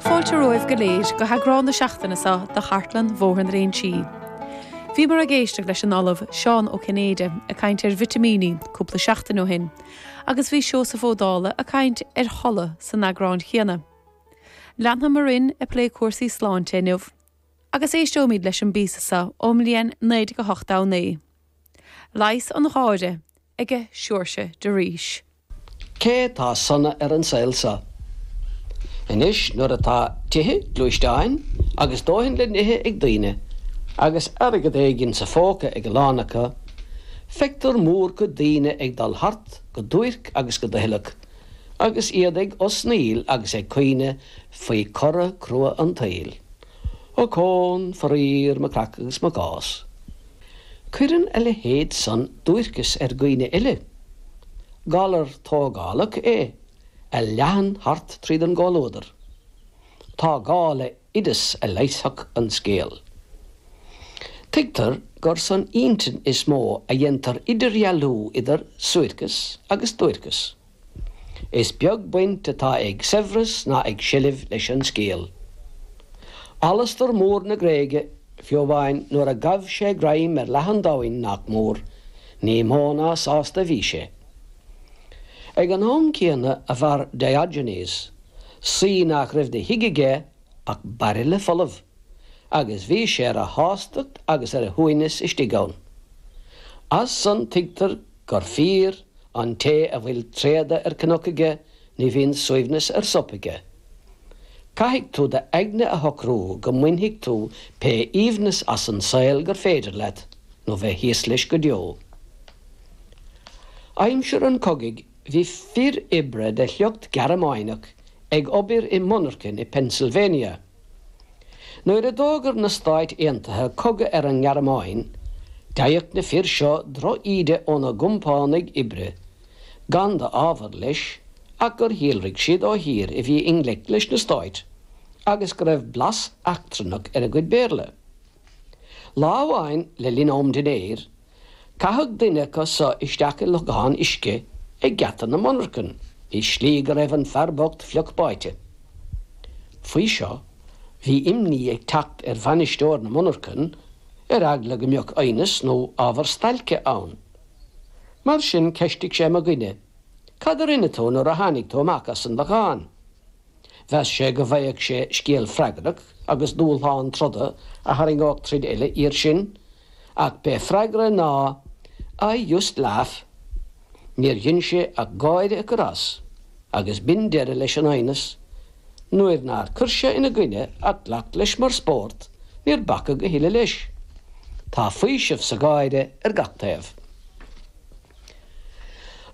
Fáilte romhaibh go léir go heagrán na seachtaine seo de Chartlann Bhóthar na Léinsí. Bhíomar ag éisteacht leis an Ollamh Seán Ó Cinnéide ag caint ar vitimíní cúpla seachtain ó shin agus bhí Seosamh Ó Dálaigh ag caint ar chodladh san eagrán chéanna. Leanfaimid orainn ag plé cúrsaí sláinte inniu agus éisteoimid leis an bpíosa seo ón mbliain 1989. Leigheas an Gháire aige Seoirse de Rís. Cé tá sona ar an saol seo? Anois nuair atá tithe, gluaisteáin agus dóthain le n-ithe ag daoine, agus airgead éigin sa phóca ag a lán acu, feictear mórchuid daoine ag dul thart go duairc agus go doicheallach, agus iad ag osnaíl agus ag caoineadh faoi chora crua an tsaoil. Ochón, faraor, mo chreach agus mo chás. Cuireann a leithéid san duairceas ar dhaoine eile. Galar tógálach é a leathann thart tríd an gcomhluadar. Tá gá le hoideas a leigheasfadh an scéal. Tuigtear gur san intinn is mó a dhéantar idirdhealú idir suairceas agus duairceas. Is beag baint atá ag saibhreas ná ag seilbh leis an scéal. Alastar Mór na Gréige, fiú amháin nuair a ghabh sé greim ar leath an domhain, nach mór, ní mó ná sásta a bhí sé. Ag an am céanna a mhair Diogenes, saoi nach raibh de thigh aige ach bairille folamh, agus bhí sé ar a shástacht agus ar a shuaimhneas istigh ann. As san tuigtear. gur fíor, an té a bhfuil tréada ar chnoc aige ní bhíonn suaimhneas ar shop aige. Caithfidh tú t'aigne a shocrú go mbainfidh tú pé aoibhneas as an saol gur féidir leat, nó bheith thíos leis go deo. Aimsir an chogaidh bhí fir oibre de shliocht Gearmáineach ag obair i monarchain i bPennsylvania. Nuair a d'fhógair na Stáit Aontaithe cogadh ar an nGearmáin, d'fhaigheadh na fir seo drochíde óna gcompánaigh oibre, gan d'ábhar leis ach gur shíolraigh siad ó thír a bhí i ngleic leis na Stáit agus go raibh blas eachtrannach ar a gcuid Béarla. Lá amháin le linn am dinnéir, caitheadh duine acu so isteach i lochán uisce ag geata na monarchan i slí go raibh an fear bocht fliuch báite. Faoi seo, bhí imní ag teacht ar bhainisteoir na monarchan ar eagla go mbeadh aighneas nó ábhar stailce ann. Mar sin, cheistigh sé mo dhuine, Cad a rinne tú nuair a tháinig tú amach as an lochán? Mheas sé go bhfaigheadh sé scéal freagrach agus dúshlán troda a tharraingeodh tríd uile iar sin, ach b'é freagra ná I just laughed. Níor dhein sé ach gáire a chur as agus b'in deireadh leis an aighneas. Nuair nár chuir sé ina gcoinne ach ghlac leis mar spórt, níor bacadh a thuilleadh leis. Tá faoiseamh sa gháire ar gach taobh.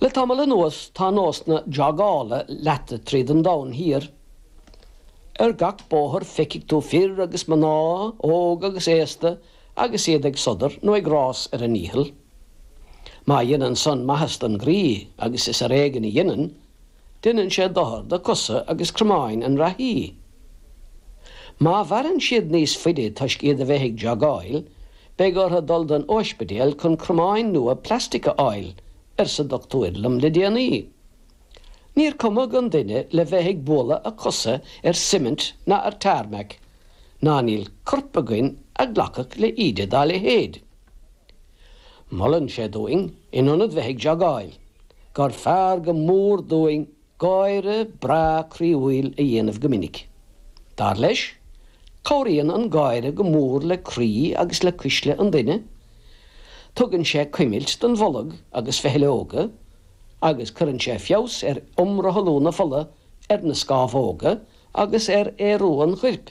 Le tamall anuas tá nósanna jogála leata tríd an domhan thiar. Ar gach bóthar feicfidh tú fir agus mná, óg agus aosta, agus iad ag sodar nó ag rás ar a ndícheall. Má dhéanann san maitheas don gcroí, agus is ar éigean a dhéanann, Deineann sé dochar do cosa agus cromáin an reathaí. Má mhaireann siad níos faide toisc iad a bheith ag jogáil, beidh orthu dul don ospidéal chun cromáin nua plastic a fháil, arsa dochtúir liom le déanaí. Níor cumadh an duine le bheith ag bualadh a cosa ar cement ná ar tarmac, ná níl corp againn a ghlacfadh le íde dá leithéid. Molann sé dúinn, in ionad bheith ag jogáil, gur fearr go mór dúinn gáire breá croíúil a dhéanamh go minic. Dar leis, cabhraíonn an gáire go mór le croí agus le cuisle an duine, tugann sé cuimilt don bholg agus feithleoga, agus cuireann sé feabhas ar imrothlú na fola, ar na scámhóga agus ar aerú an choirp.